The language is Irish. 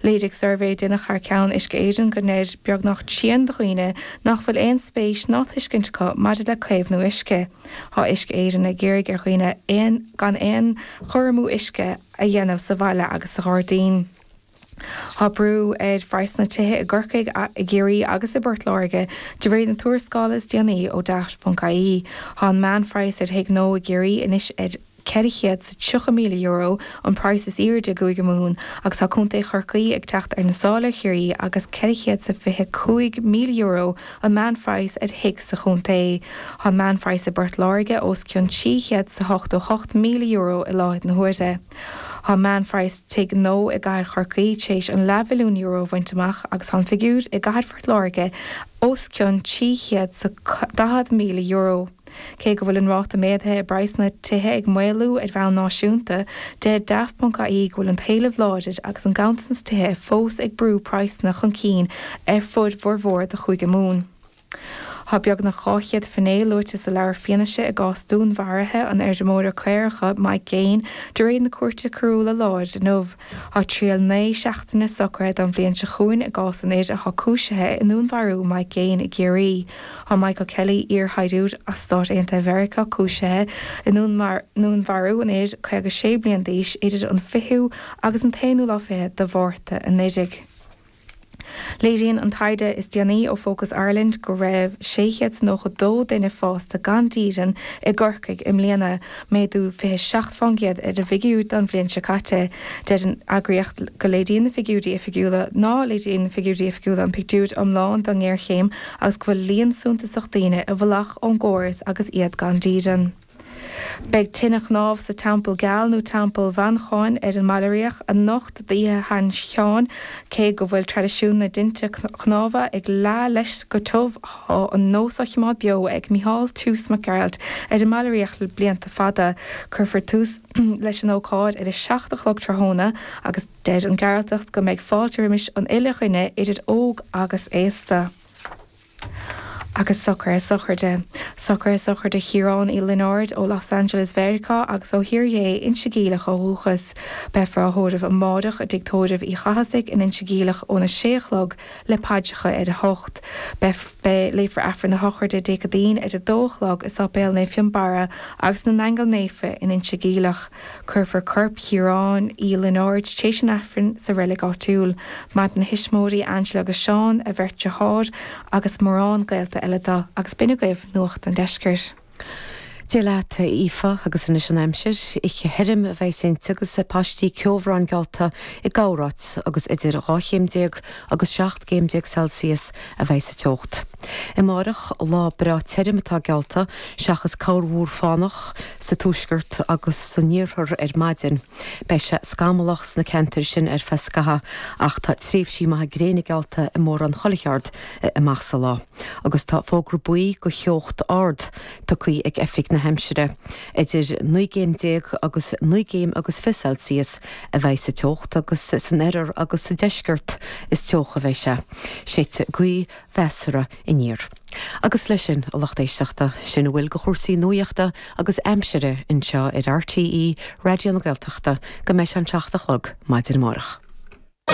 Léirigh suirbhé a deineadh thar ceann Uisce Éireann go ndeir beagnach trian de dhaoine nach bhfuil aon spéis ná tuiscint acu maidir le caomhnú uisce. Tá Uisce Éireann ag iarraidh ar dhaoine gan aon chur amú uisce a dhéanamh sa bhaile agus sa ghairdín. Tá brú ar phraghsanna tithe i gCorcaigh, i gCiarraí agus i bPort Láirge, de réir na tuarascála is déanaí ó Daft.ie. Tá an meánphraghas ar thigh nua i gCiarraí anois ar. €430,000 an praghas is aoirde i gCúige Mumhan agus tá Contae Chorcaí ag teacht ar na sála ar Chiarraí agus €425,000 an meán phraghas ar thigh sa chontae. Tá an meán phraghas i bPort Láirge os cionn €388,000 i láthair na huaire. Tá meán phraghas tigh nua i gcathair Chorcaí tar éis an leathmhilliún euro a bhaint amach agus tá an figiúr i gcathair Phort Láirge os cionn €340,000. Cé go bhfuil an ráta méadaithe i bpraghsanna tithe ag maolú ar bhonn náisiúnta, deir Daft.ie go bhfuil an t-éileamh láidir agus an ganntanas tithe fós ag brú praghsanna chun cinn ar fud bhformhór de Chúige Mumhan. Tá beagnach 200 finné luaite sa leabhar fianaise i gcás dúnmharaithe an fheirmeora caorach Mike Gaine de réir na Cúirte Coiriúla láir inniu. Tá triail naoi seachtaine socraithe don bhliain seo chugainn i gcás an fhir atá cúisithe i ndúnmharú Mike Gaine i gCiarraí. Tá Michael Kelley, iar-shaighdiúir as Stáit Aontaithe Mheiriceá, cúisithe i ndúnmharú an fhir 56 bliain d'aois idir an 20ú agus an t-aonú lá fichead de Mhárta anuraidh. Léiríonn an taighde is déanaí ó Focus Ireland go raibh 692 duine fásta gan dídean i gCorcaigh i mbliana, méadú fiche seacht fán gcéad ar an bhfigiúir don bhliain seo caite. Deir an eagraíocht go léiríonn na figiúirí oifigiúla ná léiríonn na figiúirí oifigiúla an pictiúir iomlán don ngéarchéim agus go bhfuil líon suntasach daoine i bhfolach ón gcóras agus iad gan dídean. Beidh tine chnámh sa Teampall Geal nó Teampall Mhancháin ar an mBaile Riach anocht d'Oíche Shan Sheáin, cé go bhfuil traidisiún na dtinte cnámha ag leá leis go tiubh, tá an nós á choimeád beo ag Micheál Toose Mac Gearailt ar an mBaile Riach le blianta fada. Cuirfear tús leis an ócáid ar a seacht a chlog tráthnóna agus deir an Gearaltach go mbeidh fáilte roimis an uile dhuine idir óg agus aosta. agus socruithe sochraide, socruithe sochraide Chiaráin Uí Lionáird ó Los Angeles, Mheiriceá, agus ó Thír Dhé Inse Geimhleach ó dhúchas. Beifear á thórramh amáireach i dTigh Tórraimh Uí Chathasaigh in Inse Geimhleach ón 6 a chlog le paidreacha ar a hocht. Beifear, léifear Aifreann a shochraide Dé Céadaoin ar a dó a chlog i Sáipéal Naomh Fionnbarra agus na nAingeal Naofa in Inse Geimhleach. Cuirfear corp Chiaráin Uí Lionáird, tar éis an Aifrinn, sa reilig áitiúil. Maireann a thuismitheoirí, Angela agus Seán, a bheirt deartháir, agus mórán gaolta eile dó, agus b'in agaibh nuacht an deiscirt. Gaelic leat, a Aoife, agus anois an aimsir, oíche thirim a bheas inti agus paistí ceobhráin geallta i gcorráit agus idir 12 chéim agus 17 céim Celsius a bheidh sa teocht. Amárach, lá breá tirim atá geallta, seachas corrmhúr fánach sa tuaisceart agus san iarthar ar maidin. Beidh sé scamallach sna ceantair sin ar feadh scaithea ach tá tréimhsí maithe gréine geallta i mórán chuile cheard amach sa lá. Agus tá fógra buí do theocht ard tugtha ag Oifig na hAimsire. Idir naoi gcéim déag agus naoi gcéim agus fiche Celsius a bheidh sa teocht agus san oirthear agus sa deisceart is teocha a bheidh sé. Séidfidh gaoth mheasartha aniar. Agus leis sin, a lucht éisteachta, sin a bhfuil de chúrsaí nuachta agus aimsire anseo ar RTÉ Raidió na Gaeltachta go mbeidh sé an seacht a chlog maidin amárach.